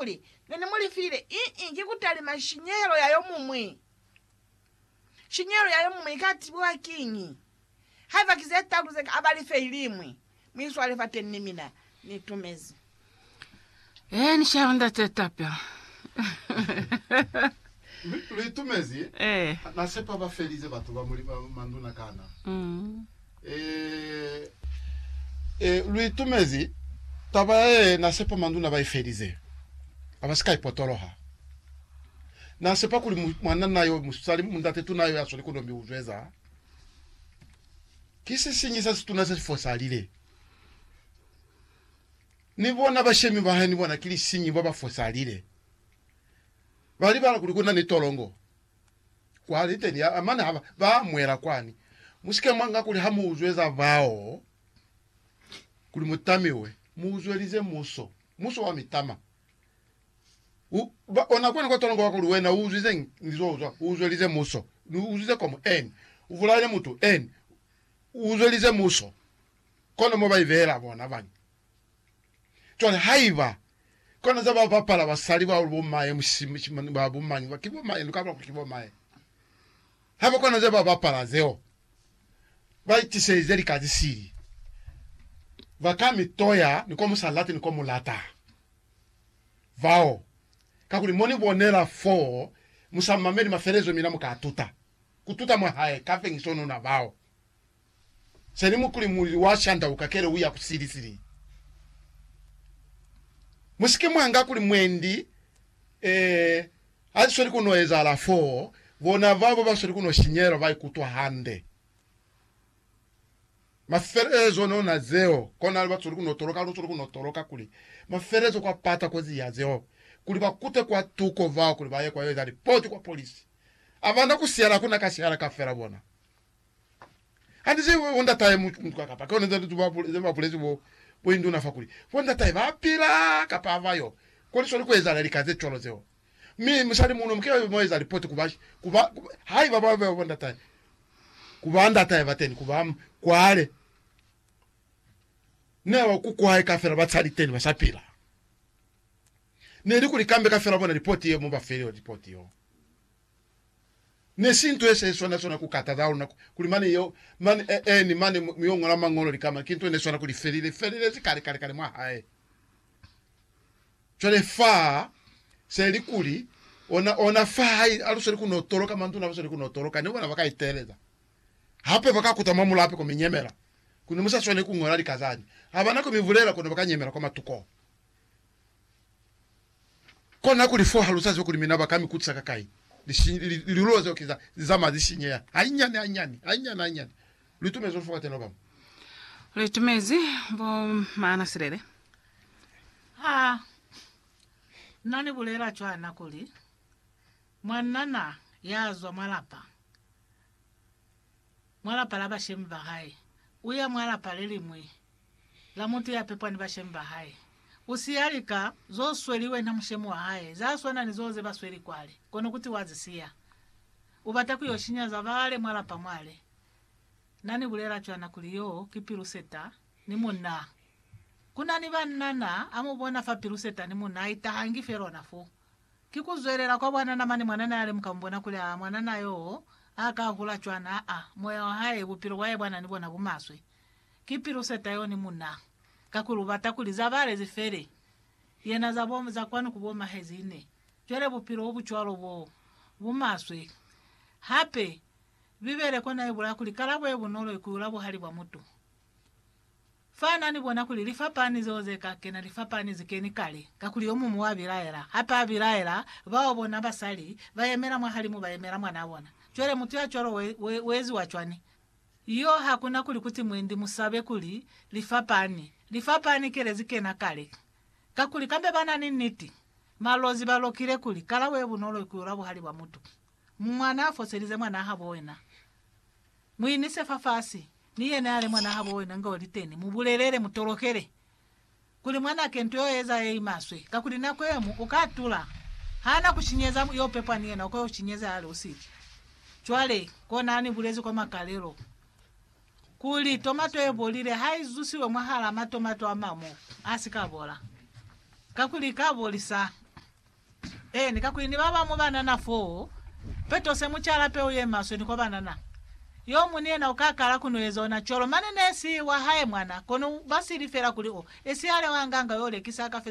kuli, Ne ni mu lifile iñi ki kutalima shinyehelo ya yo muñwi. Shinyehelo ya yo muñwi ika tibiwa kiñi? Haiba ki ze talu ze ka ba life iliñwi, mu iswale fateñi ni mina. Ni tumezi. Ee, ni shaya Ndate Tapia. Lu itumezi? Ee. Na sepa ba felize batu ba muli manduna kana? Mm. Ee, ee, lu itumezi taba ya ye na sepa manduna ba i felize, a ba si ka i potoloha. Na sepa kuli mu, mwananna yo musali, mundate tuna yo ya sweli kono mi u zweza. Ki sisiñi sa situna se si fosalile. Ni bona bashemi ba hae ni bona ki lisiñi ba ba fosalile. Ba libala kuli ku na ni tolongo. kwa liteni ya mane haba ba mwela kwani. Musike mwa nga kuli ha mu uzweza bao kuli mu tamiwe, mu uzwelize muso, muso wa mitama. U, ba, ona kwani kwa tola ngoba kuli wena u uzwize eng? Ngizo uzwa, u uzwelize muso, ni uzwize komu eng? U vulaile mutu eng? U uzwelize muso. Kono mo ba ibehela bona bani? Cwale haiba kona za ba bapala basali ba bo maye mushimishimi ba bo mañi ba ki bo maye luka lwa ki bo maye haba kona za ba bapala zeo ba itiseize lika zisili ba ka mi toya ni kwa musa lati ni kwa mulata vao kakuli mo ni bonela foo musa mameli mafelezo mina muka tuta kututa mwa hae ka fengiso nuna bao. Seli mukuli mulili wa shandauka kele uya ku sili sili. Musike mwanga kuli mwendi eh hazisweli kuno ezahala foo, bona babo basweli kuno shinyela baikutwa hande. Mafelelezo one ona zeo, konali basweli kuno toloka halu sweli kuno toloka kuli mafelelezo kwa pata kozi ya zeo kuli bakute kwa tuko bao kuli baye kwa yo eza lipoti kwa polisi. Abana ku sihala hakuna ka sihala kafela bona. Hande se bo ndatahe mu kuka kapa kona za tutu ba pule ze ba pule ze bo bo induna fa kuli bo ndatahe ba pila kapa ha ba yo. Kona swali ku ezahala lika ze cwalo zeo. Mi musali muno muke ba eza lipoti ku ba ku ba haiba ba ba bo ndatahe ku ba ndatahe ba teni ku ba kwale. Ne ba ku kwae ka fela ba tsali teni ba sa pila. Ne li kuli kambe ka fela bona lipoti ye mo ba feli lipoti yo. Ne si nto ye sa iswana swana ku kata za luna kuli mane yo mane e, eni mane mu yo ngola Mañolo likama, ki nto ne swana kuli felile, felilezi kale, kale, kale mwa hae. Cwale fa se li kuli, ona, ona fa ha i alusweli ku no toloka, manduna abasweli ku no toloka, ne bona ba ka iteleza hape, ba ka kuta mwa mulape ko mi nyemela, kuli ne mu sa swaneli ku ngola lika zani, ha ba na ko mi bulela, kono ba ka nyemela kwa matuko. Kona kuli fo halusa zeo kuli mina baka mi kutisa ka kai, lilulo zeo ki za zamaya zi sinyeha hainyani hainyani, hainyani hainyani. Li tumezi lufu kateni obamu. Li tumezi bo maana silele. Ha na ni bulela cwana kuli mwanana ya zwa mwa lapa mwa lapa la bashemi ba hae, u ya mwa lapa le liñwi la mutu ya pepwa ni bashemi ba hae. U siya lika zo sweli wena mushemi wa hae, za swana ni zo ze ba sweli kwale, kono kuti wa zi siya. U bata ku yo shinya za bale mwa lapa mwale. Na ni bulela cwana kuli yo ki Piruseta ni munaa. Ku na ni banna naa a mu bona fa Piruseta ni munaa itahangi fe lona foo. Ki kuzwelela kwa bwanana mane mwanana yale muka mubona kuli aa mwanana yoo a ka hula cwani aa moya wa hae bupilo bwae bwana ni bona bumaswe. Ki pilu seta yo ni muna. Kakuli ubata kuli za bale zi fele. Yena za bo za kwanu ku bo mahezine. Cwale bupilo obu cwalo bo bumaswe. Hape Bibele kona ibulaya kuli kalabo ye bunolo ikuyula buhali bwa mutu. Fa na ni bona kuli lifapani zeo ze ka kena lifapani zi keni kale, kakuli yo muñwi wa bilaela, hape a bilaela bao bona basali ba yemela mwahalimu ba yemela mwanaa bona. Cwale mutu ya cwalo we, we, we eziwa cwani? Yo ha ku na kuli ku ti mwendi mu sabe kuli lifapani, lifapani ki le zi kena kale, kakuli kambe ba na ni niti. Malozi ba lokile kuli, Kalabo ye bunolo i ku yula buhali bwa mutu. Mwanaa foselize mwanaa habo wena. Mu inise fafasi, ni yena yale mwana habo wena nga oli teni, mu bulelele, mu tolokele, kuli mwanake nto yo eza ye imaswe, kakuli nako yemu uka tula, ha na ku shinyeza, yo pepwa ni yena uka yo shinyeza yale usiki. Cwale, kona ha ni bulezi kwa makalelo, kuli tomato ye bolile ha i zusiwe mwahala matomato amamu, a si ka bola, kakuli i ka bolisa Eeni, kakuli ni ba bamu banana foo, peto se mu cala peu ye maswe ni kwa banana. Yo mu ni yena u ka kala ku no eza ona cwalo, mane ne si wa hae mwana, kono ba sili fela kuli o esihale wa nganga yo lekisa ka feza.